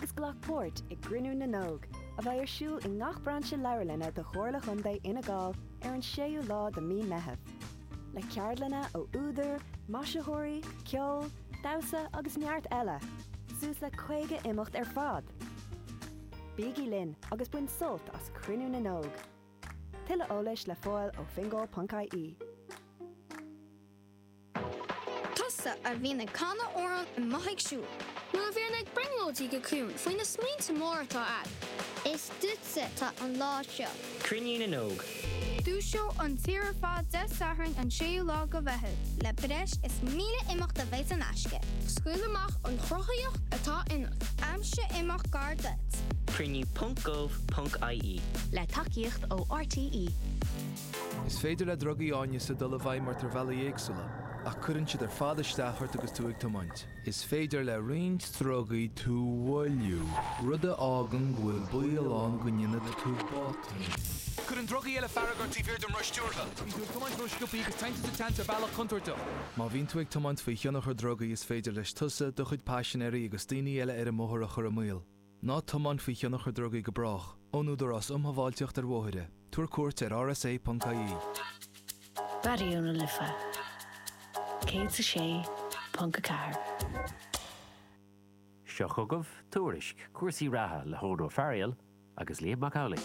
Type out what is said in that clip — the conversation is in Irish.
agus glac páirt i gCruinniú na nÓg, a bheidh ar siúl i ngach brainse leabharlainne de Chomhairle Chontae Fhine Gall ar an 6ú lá de Mí Meitheamh, le ceardlanna ó údair, maisitheoirí, ceol, damhsa agus neart eile, suas le 50 imeacht ar fad! Bígí linn agus bain sult as Cruinniú na nÓg! Tuilleadh eolais le fáil ó fingal.ie. Tusa a bhíonn ag canadh amhrán i mbóithre ag siúl. Nó a bhíonn ag brionglóidí go ciúin faoi na smaointe móra atá agat. Is duitse atá an lá seo. Cruinniú na nÓg. Dúiseoidh an tír ar fad Dé Sathairn an 6ú lá de Mheitheamh. Le breis is 1,000 imeacht a bheidh saor in aisce. Scaoil amach an chruthaitheacht atá ionat. Aimsigh imeacht gar duit. Cruinniú ponc gov ponc ie. Le tacaíocht ó RTÉ. Is féidir le drugaí áineasa dul i bhfeidhm ort ar bhealaí éagsúla, ach cuireann siad ar fad isteach ort agus tú ag tiomáint. Is féidir le roinnt drugaí tú a mhoilliú, rud a fhágann go bhfuil baol ann go ndéanfaidh tú botún. Cuireann drugaí eile fearg ort taobh thiar den roth stiúrtha. Bíonn tú ag tiomáint róscioptha agus téann tú sa tseans ar bhealach contúirteach. Má bhíonn tú ag tiomáint faoi thionchar drugaí, is féidir leis tusa, do chuid paisinéirí agus daoine eile ar an mbóthar a chur i mbaol. Ná tiomáin faoi thionchar drugaí go brách. Ón Údarás Um Shábháilteacht ar Bhóithre, Tabhair cuairt ar rsa.ie. Raidió na Life 106.4. Seo chugaibh Tuairisc cúrsaí reatha le hEoghan Ó Fearghail agus Liam Mac Amhlaigh.